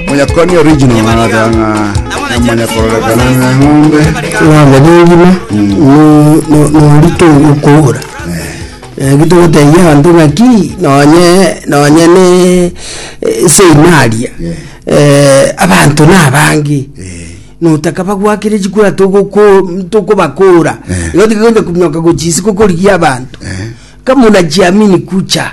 Monyakoni original anateba ng'a emanya kororekana ng'a eng'ombe Rwanda nengima norito okogora naki togotebia abanto ng'aki nonye nonye ne seimaria abanto nabange notaka bagwakere chikura togoko tokobakora igo tiga onya kominyoka gochia isiko korigia abanto kama unajiamini kucha.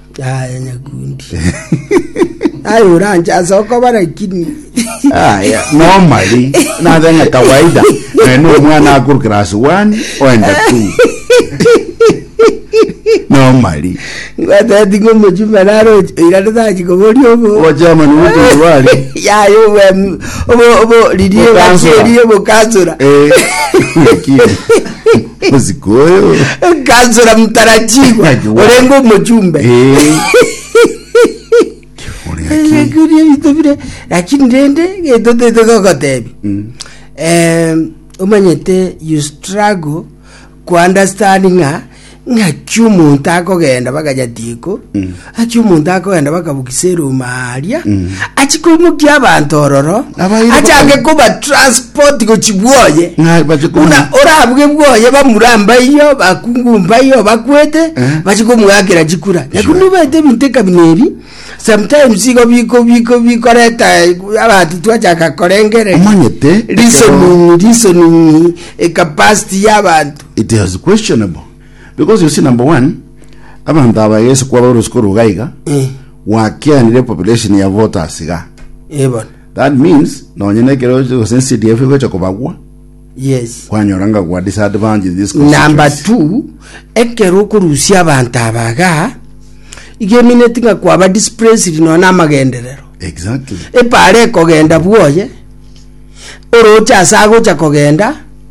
Aye nyakundi. Aye oranche ase okoba lakini. Aya, normally, naze ng'a kawaida, naye no omwana akuru class one, oenda two. Normally. Ngwateti ngomochumba naro irane tachi kobori obo. Ogochama ni ogotumbi bari. Yaye obo obo obo ririe Bokansora. bacherie bokasura. Eh, lakini. Bosiko oyo. Kansora Mtarajigwa Aywa. orenge omochumbe Eh. Ore haki. Ebiakuria bito bire lakini rende gento tete gogotebi Mm. eh, omanyete you struggle ku understand ng'a ng'aki omonto akogenda bagacha tieko Achia omonto akogenda bakabukisa eroma aria achia koimokia abanto ororo Abaire achange baka- kobatransport gochi bwoye Ng'a bache komu- buna orabuge bwoye bamura mbaiyo bakungu mbaiyo bakwete Eh. bache komwakera chikura Sure. naku nibete ebinto ekabina ebi sometimes igo biko biko bikoreta eh, abanto twachaka korengere Omanyete, ekero- reasoning reasoning eh, capacity y'abantu it is questionable Because you see number one abanto aba egese kwaba orosi korwa iga iga Eh. gwakianire population ya voters iga Eh, bono. that means nonye nekero gose CDF igocha kobagwa Yes. kwanyora nga gwa disadvantage in this number constituency. two ekero okorusia abanto abaga igemineti ng'a kwaba displaced nonya na amagenderero exactly epara ekogenda bwoye oroche ase agocha kogenda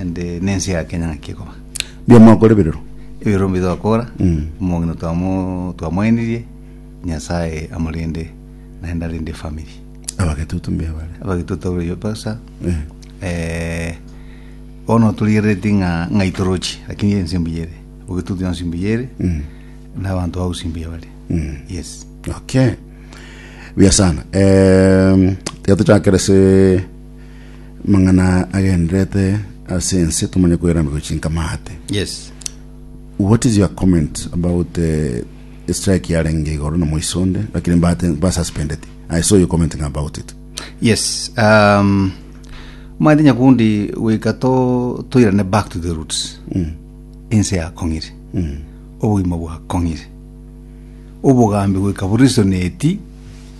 and eh, nense ya kenya ng'aki ekoba Mbuya mwakore birero. ebirero mbi twakora Mm. omong'ina twamo- twamoenirie nyasaye amorende naende arende efamiri Abagetutu mbuya bare. abagituta oyo pasa Eh. eh, bono torigerereti ng'a ng'a itorochi lakini ense mbuya ere ogitutu yonsi mbuya ere Mm. na abanto ausi mbuya bare Mm. yes Okay. Buya sana. Eh, tiga tuchakere se Mang'ana agenderete ase ense tomanye koeramigwa chinka maate. Yes. What is your comment about uh, strike yarenge igoro na moiso onde lakini mbate ba suspended. I saw you commenting about it. Yes. Um, mate nyakundi goika to toirane back to the roots. Mm. Ense yakong'ire. Mm. Obogima bwakong'ire. Obogambi goika borisoneti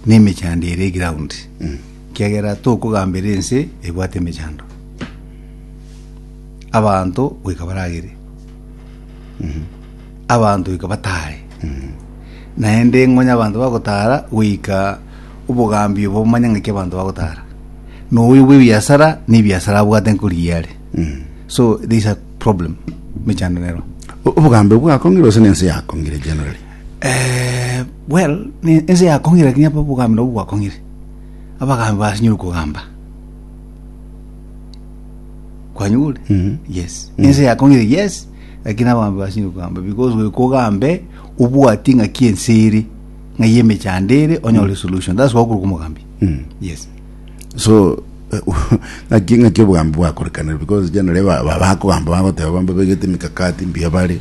nemechando ere ground. Mm. Ekiagera tokogambera ense ebwate emechando, abanto goika baragere, abanto goika batare, naende ng'onye abanto bagotara goika obogambi obo omanye ng'aki abanto bagotara. Na oyo bw'ebiasara, na ebiasara abwate nkorigia are. So there is a problem mechando nero. O- obogambe bwakong'ire gose nense yakong'ire generally Eh, well, ne- ense yakong'ire lakini apa obogambi nabwo bwakong'ire. abagaambi basinyore okogamba kwanyigure Mhm. yes Mhm. ense yakongire yes lakini abaambi basinyore okogamba because goika ogambe obwati ng'aki ense ere ng'ai emechando ere onyore solution that's why okoroka omogambi Mhm. yes so eh, ng'aki ng'aki obogambi bwakorekanire because generally ba- ba- bakogamba bagoteba bambe baigete emikakati mbuya bare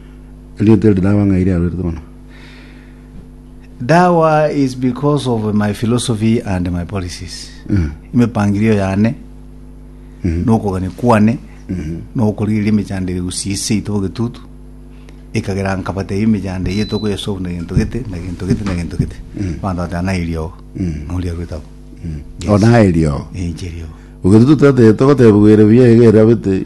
Erieta eri dawa ng'a iri arorete bono. Dawa is because of my philosophy and my policies. Emipangirio yane, nokogania kwane, nokorigereria emechando ere gusii ase ito bogetutu, ekagera nkabatebia emechando eye tokoyesolve na gento gete, na gento gete, na gento gete. Abanto bagateba naye riogo. Ng'a oria arorete abwo. Yes. Onaye riogo. Eh, inche riogo. Ogetutu tata togoteba bwere buya iga erabete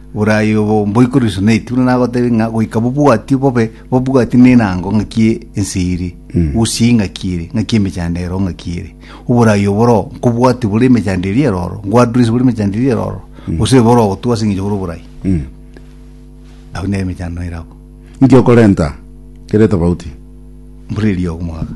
Borai obo mboikorwe Suneiti, buna nagoteebia ng'a goika bobwatio bobe bobwati nenango ng'aki ense ere, gusii ng'aki ere, ng'aki emechando ero ng'aki ere. Oborai obo boro nkobwati bore emechando eria eroro, nkwadurise bore emechando eria eroro, gose boro ogotugwa ase eng'encho bore oborai. Abwo nere emechando naira abwo. Inki okorenta kere etobauti? Mbura eria ogo mwaga.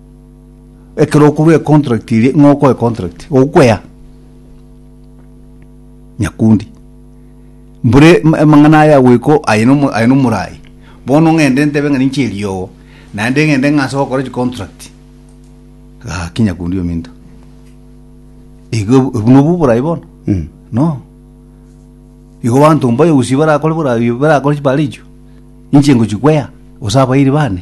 Ekero okorwa econtract eria ng'a okoe contract okwea nyakundi mbore m- amang'ana aya agweko aye nomo- aye nomorai bono ng'ende ntebe ng'a ninche eriogo naende ng'ende ng'ase gokora chicontract gaki nyakundi ominto igo obo- obu nobu oborai bono Mm. no igo banto mbayo gusii barakore borai barakore chibarichio inche ngochi kwea gose abairi bane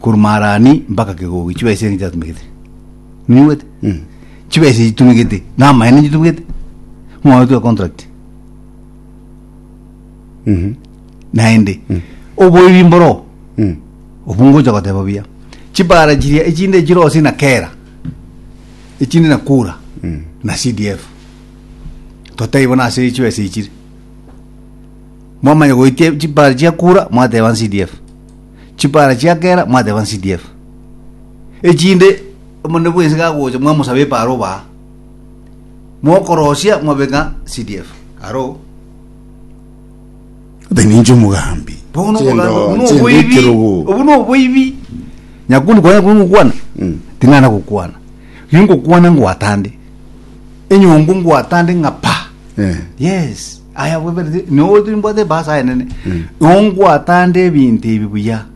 korwa Maharani mpaka Kegogi, chibesa enki chiatumegete? Ninyigwete? Chibesa echi chitumegete, na amaene chitumegete, ng'oyo twe contract. Naende, oboibi mboro, obwo ngocha goteba buya. Chibara chiria echinde chire ose na Kera, echinde na Kura, na CDF. Totai bono ase chibesa echi chire. Mwamanya goitia chibara chia Kura, mwateba CDF. chipara chia kera mwateba nCDF. Echinde omonene bwense gagocha mwamosaba epara obaa. Mokorosia mwabeka cdf. Aro. Ode ninche omogambi. Bono Chendo- obogambo, buno chendo oboibi, ekerogo. obu no oboibi. Nyakuni kwa nyakuni ngokwana. Mm. Ting'ana gokwana. Ringokwana ngwatande. Enyongo ngwatande ng'apa. Eh. Yes. Aya bweberete nyowe turi mbwate basa aye nene ongwatande ebinto ebi buya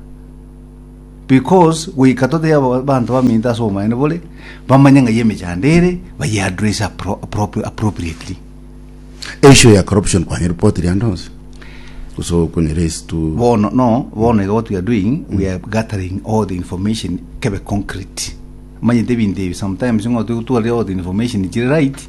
because goika tote aba- banto baminto ase omaene bore bamanye ng'a yemechando ere bayeaddress appro- appro- appropriately Issue ya corruption kwanye report riande onsi. Guso kunyere is to bono no bono iga what we are doing we are gathering all the information kebe concrete manyete ebinto ebi sometimes ng'otwe gotwarire all the information chire right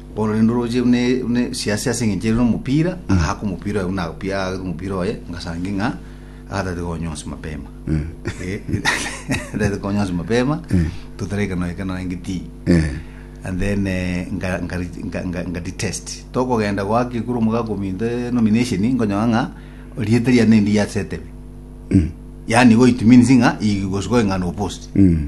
Ororende oroche buna buna siasi ase engencho ere nomopira agaka omopira oye buna agapia agaka omopira oye ngasange ng'a agatati konya onsi mapema Eh, agatati konya onsi mapema totare ekero naye ekero narenge tii Eh. and then eh, nga- nga- nga- nga- ngati test tokogenda goaka ekuru omogaka ominto eh, nomination nkonyora ng'a rieta riane endi yase etebe yani igo it means ng'a igosuka ng'a no post Mm.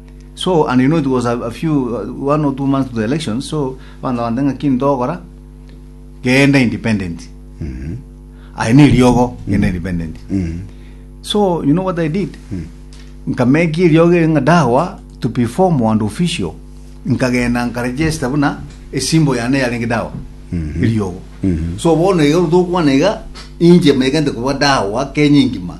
So, and you know it was a, a few uh, one or two months to the election so banda bande ng'aki ntogora genda independent aye ne riogo genda independent so you know what i did nkameki riogo eri ng'a dawa to be formal and official nkagenda nkaregister buna esimbo yane yarenge dawa eriogo so bono iga tokwana iga inche megente kuba dawa kenya engima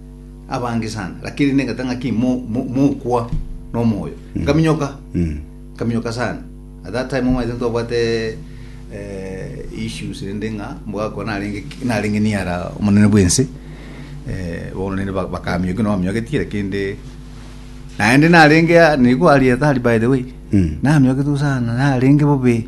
abange sana lakini nengata ng'aki mo- mo- mokwa nomoyo nkaminyoka Mm. nkaminyoka sana at that time omanyete ntobwate eh, issues rende ng'a mbwako narenge narenge niara omonene bwense eh, bono nende ba- bakamioki nominyogetie lakini naende narenge a- nigo arieta ari by the way Mm. namiogetwe sana narenge bobe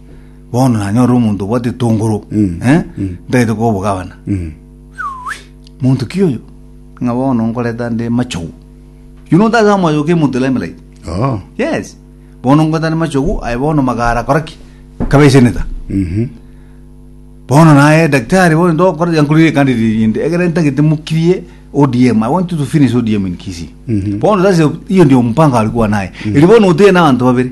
bono nanyore omonto obwate etongoro eh, ntagete koba obogabana monto ki oyo ng'a bono nkoreta nde machogu yuno ntase amayo ke monto lemelaiti Oh. yes bono nkoreta nde machogu aye bono magara kora ki kabeseneta Mhm. bono naye daktari bono ndokora yankurire kandi rinde egere ntagete mukirie ODM I want you to finish ODM in Kisii bono sasa iyo ndio mpango alikuwa naye ili bono uteye na abantu babere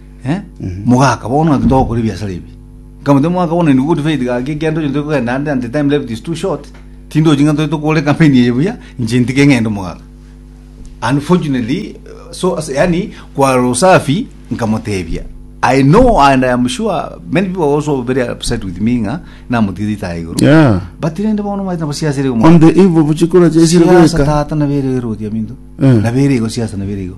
Eh? Mogaka bono ati togokora ebiasara ebi. Nkamate mogaka bono in good faith gaki ekiagera ntoche ntoche kogenda ande and the time left is too short. Tindochi ng'a ntoche tokore campaign eye buya inche ntike ng'ende mogaka. Unfortunately eh, so as- yani kwara usafi nkamotebia I know and I am sure many people are also very upset with me ng'a namotigete itaga igoro. Yeah. But rende bono maite nabo siasa ere On omwana. the eve of chikura chesire Siasa goika. tata nabere erodia minto. Eh. Nabere igo siasa nabere igo.